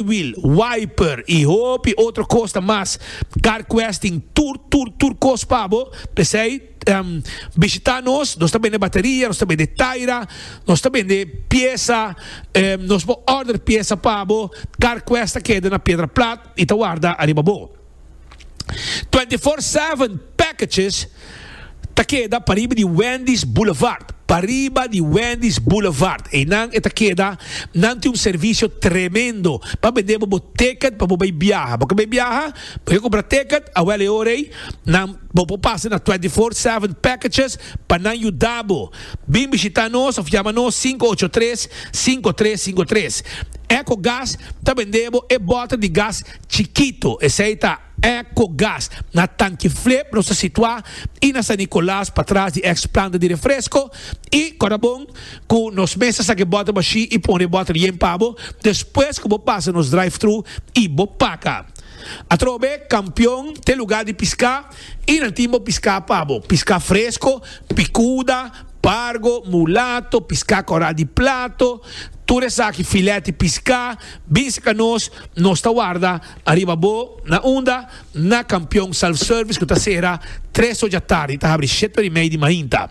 Flywheel, wiper y hopi otro cosnan mas. Car Quest tin tur tur tur cos pa bo, p'esey bishita nos, nos ta bende bateria, nos ta bende taira, nos ta bende pieza, nos por order pieza pa bo, Car Quest ta keda na Piedra Plat y ta warda ariba bo. Twenty Four Seven packages ta keda pariba di Wendy's Boulevard, pariba di Wendy's Boulevard. Einan e ta keda. Nan tin un servicio tremendo pa bende bo bo ticket pa bo bay biaha. Bo ke bay biaha? Bo ke compra ticket? Awel e ora ey nan bo por pasa na Twenty Four Seven packages pa nan yuda bo. Bin bishita nos of yama nos sinku ocho tres, sinku tres sinku tres. Ecogas ta bende bo e bota di gas Chikito, esei ta Eco Gas. Na Tanki Flip nos ta situá i na San Nicolas patras di eks planta di refresko i Corabon ku nos mes ta saki bòter bashí i pone e bòter yen pa bo despues ku bo pasa nos drive-thru i bo paka. Atrobe Kampion t'e lugá di piská i nan tin bo piská pa bo, piská fresko, pikuda, pargo, mulato, piská kòrá di plato, tur esaki filèt di piská, Bin serka nos, nos ta warda ariba bo na unda na Kampion Self Service ku ta sera tres ocha tardi i ta habri shete ora i mei di mainta.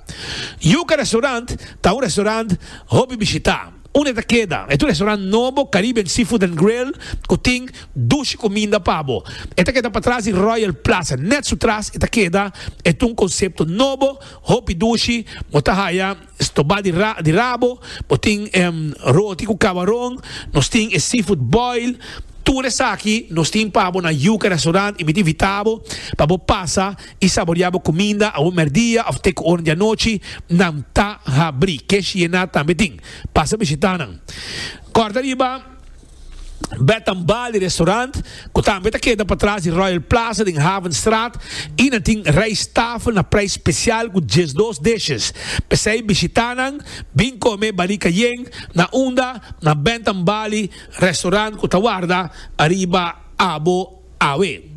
Yuka Restaurant ta un restaurant hopi bishitá unda e ta keda. E ta un restaurant nobo Caribbean Seafood and Grill ku tin dushi kuminda pa bo. E ta keda patras di Royal Plaza. Nèt su tras e ta keda e ta un konsepto nobo, hopi dushi, bo ta haya. Stobá di ra di rabo, bo tin em roti ku kabaron, nos tin e seafood boil, tur esaki nos tin pa bo na Yuca Restaurant i mi ta invitá bo pa bo pasa i saboriá bo kuminda awor mèrdia òf te ku oren di anochi, nan ta habrí. Kesh Yena tambe tin. Pasa bishitá nan. Kòrda riba. Bethan Bar di restaurant, cu tambe ta keda patras di Royal Plaza den Havenstraat y nan tin rijsttafel na prijs special cu diesdos dishes. P'esey bishitanan, bin come Bali Cayenne na unda na Bethan Bar di restaurant cu ta warda ariba abo. Awe.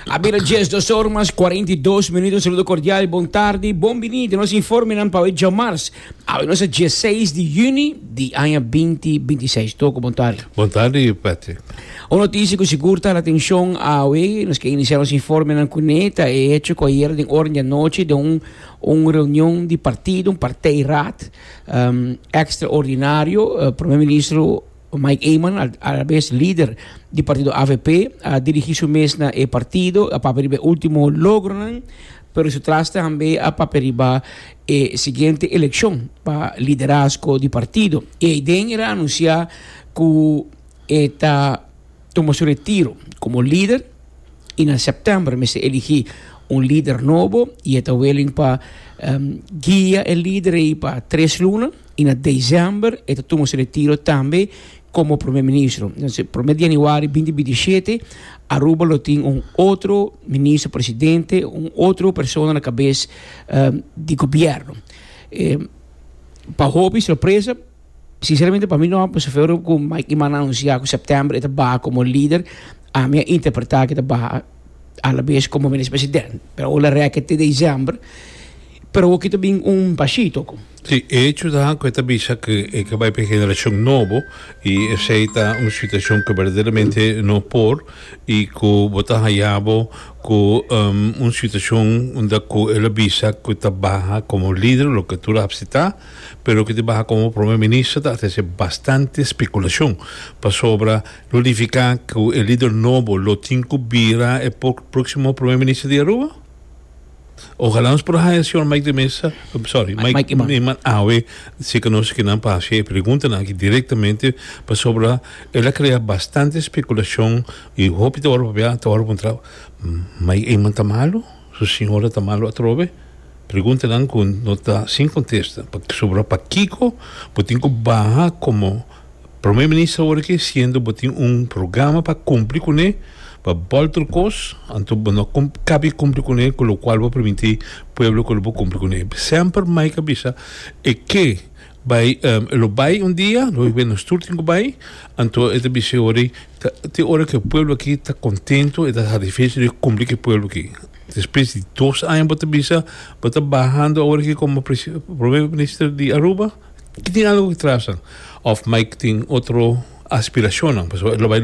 A bira dies dos or mas cuarenta i dos minuut. Un saludo cordial y bon tardi. Bon bini den nos informenan pa awe djamars. Awe nos a dieseis di juni di aña binti binti seis. Toko, bon tardi. Bon tardi, Patrick. Un noticia cu sigur ta hal atencion awe. Nos ke inicia nos informenan cu ne ta e hecho cu ayer den oren di anochi den un un reunion di partido, un partijraad, ehm, extraordinario, Primer Ministro, Mike Eman, alabes lider di partido avp, a dirigi su mes na e partido, a papia riba e ultimo logronan, pero su tras tambe a papia riba e siguiente eleccion pa liderazgo di partido. Eiden era anuncia cu e ta. tuma su retiro komo lider i na sèptèmber mester eligí un lider nobo i e ta wiling pa guia e lider ei pa tres luna i na desèmber e ta tuma su retiro tambe komo promé ministro. Entonces, promé di yanüari binti binti shete Aruba lo tin un otro ministro presidente, un otro persona na kabes di gobièrnu. Pa hopi sorpresa. Sinceramente pa mi no a pasa feo cu Mikey manda anuncia cu september e ta baha como lider, ami a interpreta cu e ta baha alabes como Minister President, pero awo lo reke te december, pero awo kito bin un pashito cu. Si, e hecho ta cu e ta bisa cu e ke bai pa e generacion nobo y esey ta un situacion cu berdaderamente no por y cu bo ta haya bo cu un situacion unda cu el a bisa cu ta baha como lider, loke tur a hapsi ta. Pero cu te baha como Prome Minister ta trece bastante speculacion pasobra lo nifica cu e lider nobo lo tin cu bira e proximo Prome Minister di Aruba? Ojala nos por haya Señor Mike de Meza, sorry, Mike Eman awe si cu nos kinan pa haci e preguntanan aki directamente pasobra el a crea bastante speculacion y hopi ta word papia ta word puntra Mike Eman ta malo? Su siñora ta malo atrobe? Preguntanan cu no ta sin contesta. Pasobra pakico bo tin cu baha como Prome Minister awor aki siendo bo tin un programa pa cumpli cu ne pa bolter cos anto bo no cabi cumpli cu ne cu locual bo permiti pueblo cu lo bo cumpli cu ne? Semper Mike a bisa e ke Bai, lo bai un dia, lo bai nos tur tin cu bai, anto e ta bis'e ora, te ora cu e pueblo aki ta contento, e ta satisfecho di cumpli cu e pueblo aki. Despues di dos aña bo ta bisa, bo ta bahando awor aki como Primer Minister di Aruba, tin algo cu trasa of Mike tin otro aspiracionnan, pasobra e lo bai.